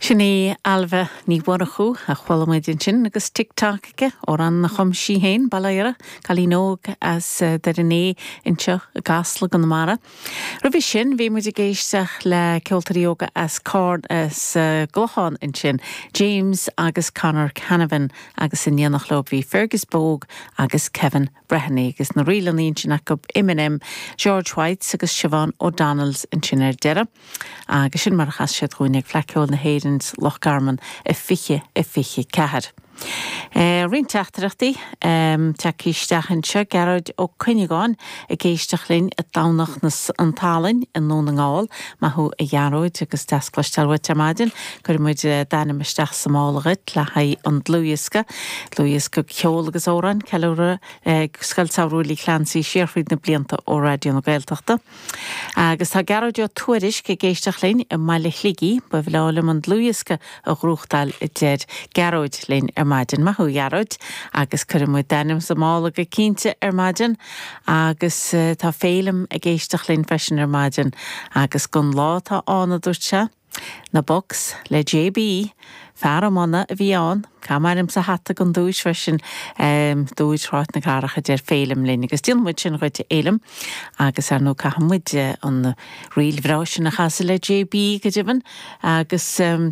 Sin í Ailbhe Ní Mhurchú a chuala muid ansin agus Tick Tock aici, amhrán a chum sí féin, Baile Oighre, cailín óg as Doire Né anseo i gCasla, Conamara. Roimhe sin bhí muid ag éisteach le ceoltóirí óga as Carna agus an gClochán ansin, James agus Conor Canavan agus in éineacht leo bhí Fergus Bogue agus Kevin Breheny agus na ríleanna ansin acu, M and M, George Whites agus Siobhán O'Donnells ansin ar deireadh. Agus sin mar a chas siad dúinne ag Fleadh Cheoil na hÉireann sa Loch Garman i 2024. Roinnt teachtaireachtaí tagtha isteach anseo, Gearóid Ó Cuinneagáin ag éisteacht linn i dTamhnach an tSalainn i nDún na nGall, maith thú a Ghearóid agus deas cloisteáil uait ar maidin, Cuirfidh muid d'ainm isteach sa mála dhuit le haghaidh an dlúthdhiosca. Dlúthdhiosca de cheol agus amhráin. Ceiliúradh ar Scoil Samhraidh Willie Clancy siar fríd na blianta ó Raidió na Gaeltachta. Agus tá Gearóid Ó Tuairisc ag éisteacht linn i mBaile Shligigh. Ba bhreá liom an dlúthdhiosca a ghnóthachtáil, a deir Gearóid linn ar maidin. Maith thú, a Ghearóid. Agus cuirfidh muid d'ainm sa mála go cinnte ar maidin. Agus tá Féilim ag éisteacht linn freisin ar maidin. Agus gurb é an lá atá ann, a dúirt sé. Na Bucks, le J. B. Fear amháin a bhí ann, cuir m'ainm sa hata don duais freisin. Dúid thráigh na gcarach a deir Féilim linn agus déanfaidh muid sin dhuit a Fhéilim agus ar ndóigh caithfidh muid an ríl bhreá sin a chasadh le J. B. go deimhin agus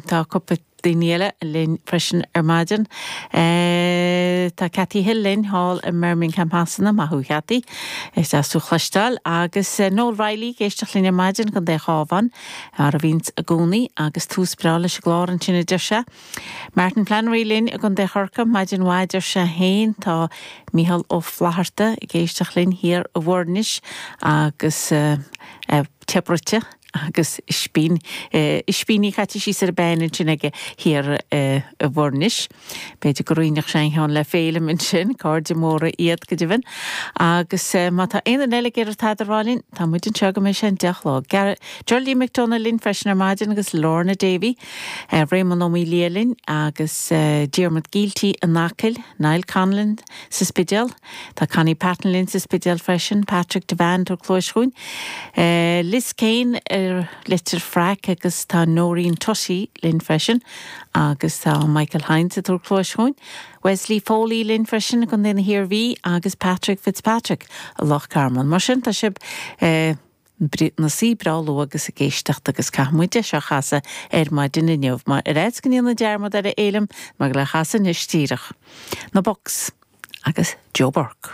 tá cúpla daoine eile linn freisin ar maidin. Tá Cathy Hill linn thall i mBirmingham Shasana, maith thú a Chathy, is deas thú chloisteáil agus Noel Reilly ag éisteacht linn ar maidin i gContae an Chabháin. Fear a bhíonns i gcónaí agus tús breá leis an gclár ansin, a deir sé. Martin Flannery linn i gContae Chorcaigh maidin mhaith, a deir sé féin. Tá Micheál Ó Flaithearta ag éisteacht linn thiar i bhFoirnis agus tae bruite agus ispíní caite síos ar an bpean ansin aige thiar i bhFoirnis. B'fhéidir go roinnfeadh sé ceann le Féilim ansin, cairde móra iad, go deimhin. Agus má tá aon duine eile ag iarraidh tada a rá linn, tá muid anseo go mbeidh sé an deich a chlog. Geraldine McDonagh linn freisin ar maidin agus Lorna Davey, Réamonn Ó Maolaodha linn agus Diarmuid Gielty in Acaill, Niall Conlon sa Spidéal, tá Connie Patton linn sa Spidéal freisin, Patrick Devant ó Chois Cuain, Liz Kane as Leitir Fraic agus tá Noreen Tutty linn freisin. Agus tá Michael Hynes, thiar Cois Cuain, Wesley Foley linn freisin i gContae na hIarmhí agus Patrick Fitzpatrick i Loch Garman. Mar sin tá sibh i bhur suí breá luath agus ag éisteacht agus caithfidh muid é seo chasadh ar maidin inniu. Mar ar fhaitíos go ndéanfainn dearmad air a Fhéilim, mar goil é a chasadh anois díreach. Na Bucks agus Joe Burke.